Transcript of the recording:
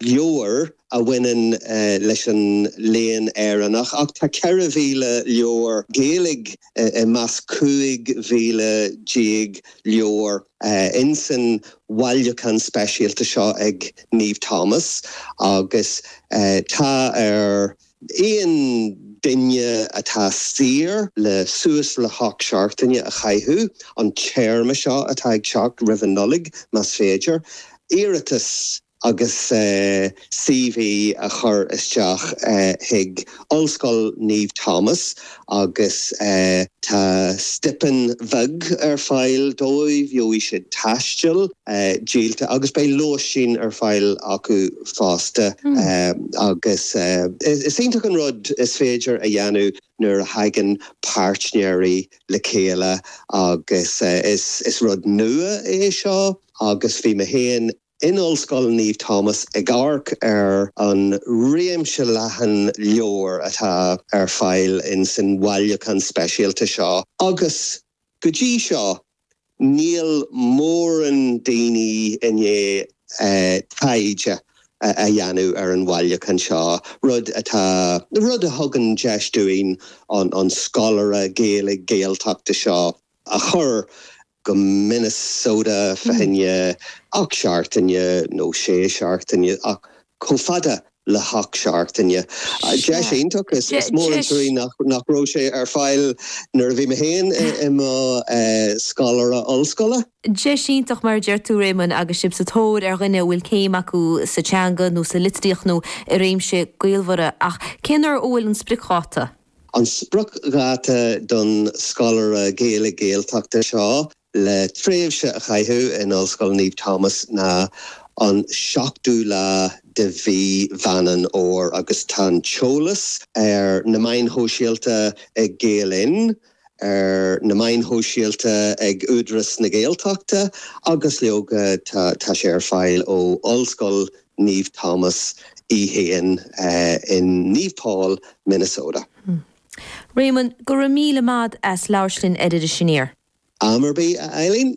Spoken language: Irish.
leabhair a bhaineann leis an Léann Éireannach ach tá 4,000 leabhar Gaeilge i measc 15,000 leabhar insan bhailiúchán speisialta seo ag Naomh Thomas agus tá ar. Aon duine atá saor le suas le hocht seachtaine a chaitheamh, an téarma seo atá ag teacht, roimh an Nollaig, más féidir, iarratas agus CV a chur isteach chuig Ollscoil Naomh Thomas. Agus tá stipinn bheag ar fáil dóibh, gheobhaidh siad taisteal díolta agus beidh lóistín ar fáil acu fosta. Agus is iontach an rud is féidir a dhéanamh nuair a thagann páirtnéirí le chéile agus is rud nua é seo agus bhí mé féin In Ollscoil Naomh Thomas ag amharc ar an réimse leathan leabhar atá ar fáil insan bhailiúchán speisialta seo agus go dtí seo níl mórán daoine i ndiaidh taighde a dhéanamh ar an bhailiúchán seo, rud atá, rud a thugann deis dúinn an scoláire Gaeilge Gaeltachta seo a chur go Minnesota fá choinne ocht seachtaine nó sé seachtaine ach chomh fada le hocht seachtaine. Deis iontach. Is mór an truaí nach raibh sé ar fáil nuair a bhí mé féin i mo scoláire ollscoile. Deis iontach mar a deir tú, Réamonn, agus sibh sa tóir ar dhuine a bhfuil céim acu sa teanga nó sa litríocht nó i réimsí gaolmhara. Ach cén uair a bhfuil an spriocdháta? An spriocdháta don scoláire Gaeilge Gaeltachta seo le tréimhse a chaitheamh in Ollscoil Naomh Thomas ná an 7ú lá de mhí Mheán Fómhair agus tá an t-eolas ar na meáin shóisialta ag Gael Linn, ar na meáin shóisialta ag Údaras na Gaeltachta agus leoga tá sé ar fáil ó Ollscoil na. Naomh Thomas í féin in Naomh Paul, Minnesota. Réamonn, Go raibh míle maith agat as labhairt linn ar Iris Aniar. Am ar bith, a Eileen.